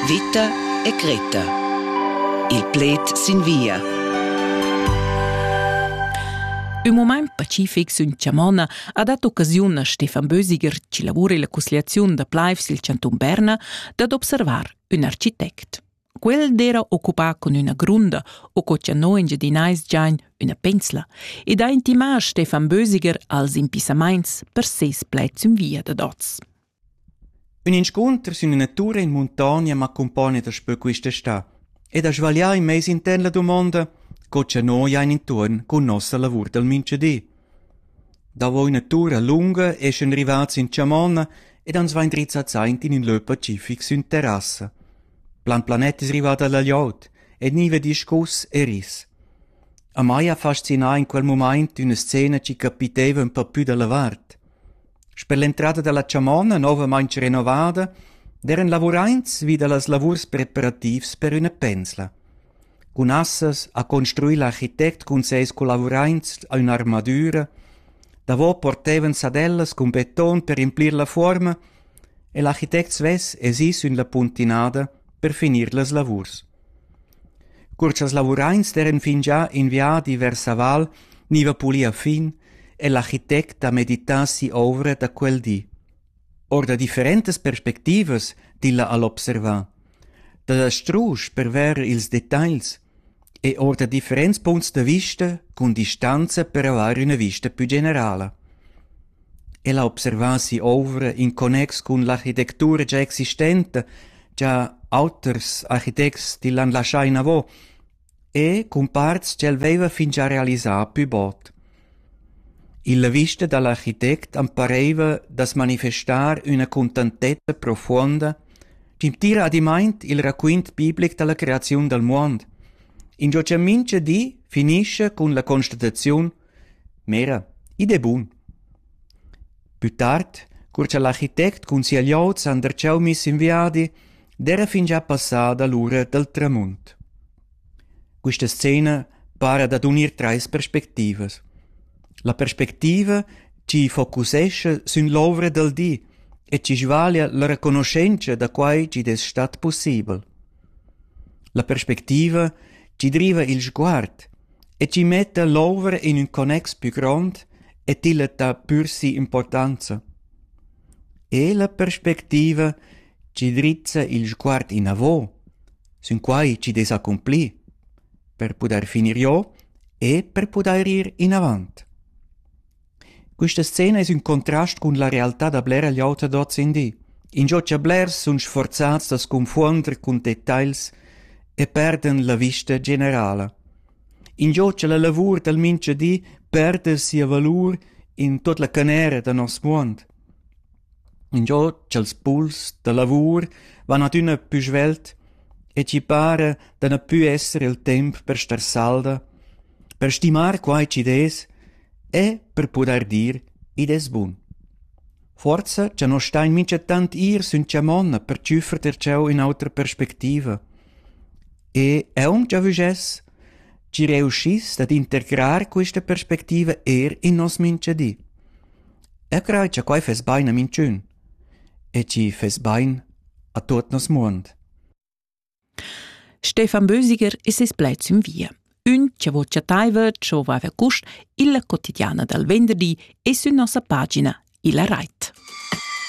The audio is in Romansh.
Vita e Greta. Il pled sin via. Ün mumaint pacific sün Chamona ha dat occasiun a Stefan Bösiger, chi lavura illa cussgliaziun da plaivs i'l chantun Berna, dad observar ün architect. Quel d'era occupà cun üna grunda o co cha no engiadinais giain üna pensla ed ha intimà Stefan Bösiger als impissamaints per seis pled sün via dad oz. Ün inscunter sün üna tur in muntogna m'accumpogna daspö quist'està ed ha svaglià in meis intern la dumonda co cha noi hain intuorn cun nossa lavur dal mincha di. Davo üna tura lunga eschan rivats in chamonna ed ans vain drizzats aint in ün lö pacific sün terrassa. Plan planet es rivada la glieud e gniva discuss e ris. A mai ha fascinà in quel mumaint üna scena chi capiteva ün pa pü da la vart. Sper l'entrada dalla chamonna novamain renovada d'eran lavuraints vi dallas lavurs preparativs per üna pensla. Cun assas ha construi l'architect cun seis collavuraints a ün'armadüra. Davo portevan sadellas cun beton per implir la fuorma e l'architect svess es ì sün la puntinada per finir las lavurs. Cur cha'ls lavuraints d'eiran fingià in viadi vers la val gniva pulì a fin è l'architect da meditar si'ouvra da quel di. Our da differentas perspectivas tilla ha'l observà. Da strusch per verer ils detagls e our da differents punts da vista cun distanza per avair üna vista pü generala. El ha observà si'ovra in connex cun l'architectura gia existenta cha auters architects til han laschà inavo e cun parts ch'el vaiva fingià realisà pü bod. Illa vista da l'architect am paraiva da's manifestar üna cuntantezza profuonda chi'm tira adimaint il raquint biblic da la creaziun dal muond, ingio cha mincha di finischa cun la constataziun Mera, id è bun. Pü tard, cur cha l'architect cun sia glioud s'han darcheu miss in viadi, d'eira fingià passada l'ura dal tramunt. Quista scena para dad unir trais perspectivas. La perspectiva chi focusescha sün l'ouvra dal di e chi svaglia la reconoschentscha da quai chi'd es stat pussibel. La perspectiva chi driva il sguard e tgi metta l'ovra in ün connex pü grond e tilla dà pür si'importanza. E la perspectiva chi drizza il sguard inavo, sün quai chi dess accomplir, per pudair finir jo e per pudair ir inavant. Questa scena es ün contrast cun la realtà da blera gliout ad hoz in di. Ingio cha blers sun sforzats da sconfuonder cun detagls e perdan la vista generala. Ingio cha la lavur dal mincha di perda sia valur in tuot la canera da nos muond. Ingio cha'ls puls da lavur van adüna pü svelt e chi para da na pü esser il temp per star salda, per stimar quai chi'd es E, per pudair dir, id es bun. Forsa cha no stain minchatant ir sün chamonna per tschüffer ter cheu ün'otra perspectiva. E eau già vügess, chi reuschiss dad integrar quista perspectiva eir in nos minchadi. Eu craj cha quai fess bain a minchün. E chi fess bain a tuot nos muond. Stefan Bösiger e ses plaids in via. Ün cha vo chattaiva co vaiva cust illa quotidiana dal venderdi e sün nossa pagina illa rait.